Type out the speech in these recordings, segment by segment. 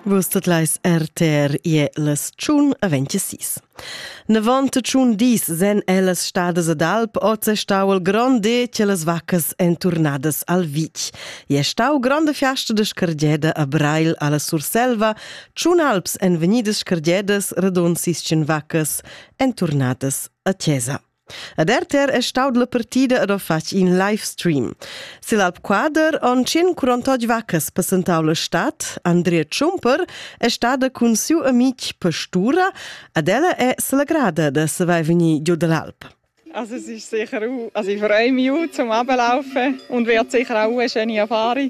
Vus tot leis RTR ie las tschun a 26. 93 dis sen ellas stadas ad Alp oz è stau il grond de che las vaccas en turnadas al Vic. E è stau grande fiasta de scargeda a Breil alla Surselva, tschun alps en venidas scargedas radon sis vaccas en turnadas a Chiesa. Ad RTR è staud la partida ed ho fatg in live stream. Sil Alp Quader on tschin curontog vaccas passentau la stad. Andrea Schumper è stada cun siu amic Pastura ed ella è selegrada da saver vegnir giu dall'Alp. Also es ist sicher auch, also ich freue mich auch zum Ablaufen und wird sicher auch eine schöne Erfahrung.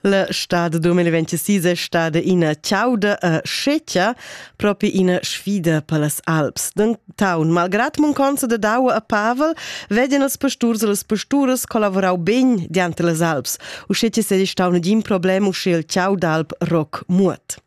La stad 2026 è stada ina chauda e scetga, propi ina sfida per las Alps. Denton, malgrad mancanza da daua a Pavel, vedian els pasturs e las pasturas collavorau bene diante las Alps, uschè che sei stau negin problem uschè il chau d'alp Rock Muot.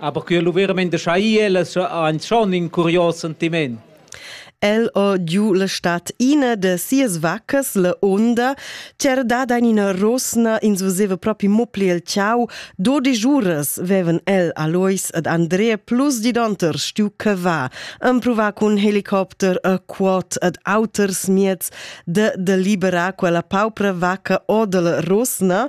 Aber quel lu verament schai ella ein schon in curios sentiment. El o giu la stat ina de sias vaccas, la onda, c'era dada in ina rosna, ins veseva propi mopli el ciau, dodisch uras veven el Alois ed Andrea plus di donter stiu che va, empruva cun helicopter a quot ed auters mieds de de liberar quella paupra vacca o de la rosna,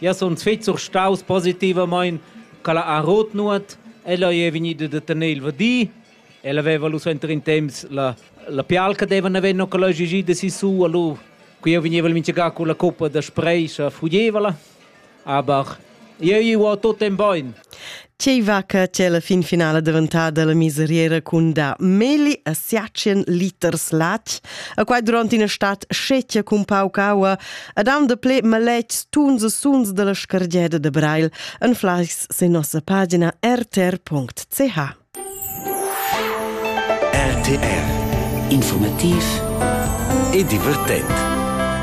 Jeu sun fetg surstaus positivamein ch'ella ha rot nuot. Ella ei vegnida da tener il vadi. Ella veva lu suenter in temps la, la pial che devan haver no che leugi gi da sisu a lu che jeu vegneva mintgaga con la coppa da spreisch a fugeva la. Aber jeu ei ual tut en bein. Tgei va che c'è la fin finale daventata la miseriera cun da meli a siacien liters latg, a quai durant ina stat scettia cun pauc aua, ad am de ple maletgs tuns e suns della scargeda de Breil, en fleischs se nossa pagina rtr.ch. RTR Informativ e divertent.